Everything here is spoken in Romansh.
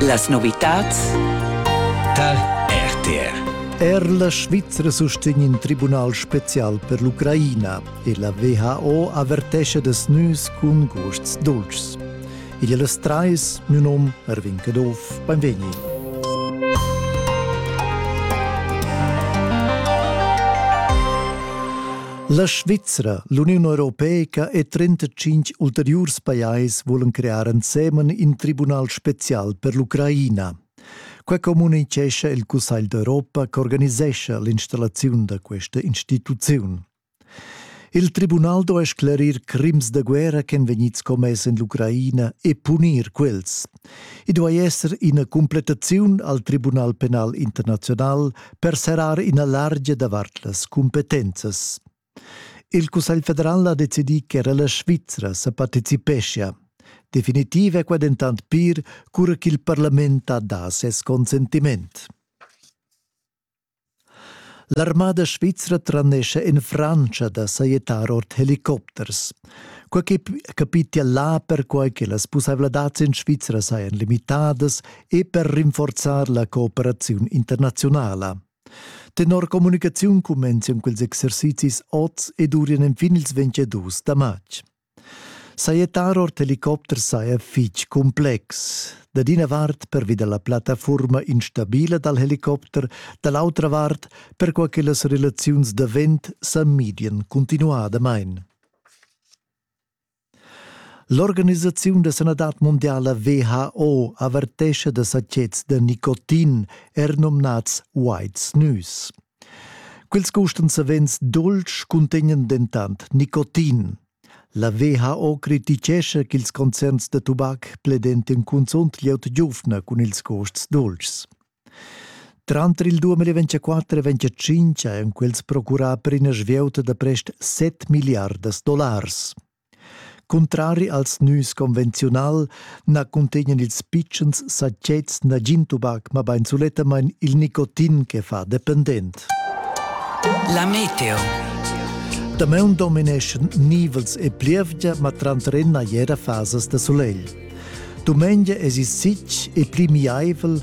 Las novitads tar RTR. Er la Svizra sustegn in tribunal spezial per l'Ucraina e la WHO avertescha das nüs cun gusts dolcis. Igl e las trais, mio nom Erwin Caduff, benvegni. La Svizra, l'Uniun Europeica e 35 ulteriurs pajais vulan crear ensemen in tribunal spezial per l'Ucraina. Quai communitgescha il Cussegl d'Europa ch'organisescha l'installaziun da questa instituziun. Il tribunal do a sclerir crims da guerra ch'èn vegnids commess en l'Ucraina e punir quels. I duai esser ina completaziun al Tribunal penal internazional per serrar ina largia davart las cumpetenzas. Il Cussegl federal ha decidì che era la Svizra sa participeschia. Definitiv è qua dentant pir, cura ch'il parlament ha dà ses consentiment. L'armada svizra tranescha en Frantscha da sajettar ord helicopters. Quai che capitia là perquai che las pussaivladads en Svizra sajan limitadas e per rinforzar la cooperaziun internaziunala. Tenor communicaziun cumenzien quels exercizis oz ed urien enfin ils 22 da matg. Sajettar ord helicopter saja fitg cumplex. Dad ina vart pervi da la plattafurma instabila dal helicopter, da l'autra vart perquai che las relaziuns da vent sa midian continuadamain. L'organisaziun da sanadad mondiala WHO avertescha da sachets da nicotin, er nomnads White Snus. Quels gustan savens dultsch cuntegnan dentant nicotin. La WHO criticescha ch'ils concerns da tubac pledentian cunzunt glieud giuvna cun ils gusts dultschs. Tranter il 2024 e 2025 han quels procurà per ina svieuta da prest 7 miliardas dollars. Cuntrari als nüs convenziunal na cuntegnan ils pitschens satgets nagin tubac, mabain sulettamain il nicotin che fa dependent. La meteo. Damaun domineschan nivels e plievgia, ma tranter ennà era fasas da sulegl. Dumengia es il sitg e pli miaivel,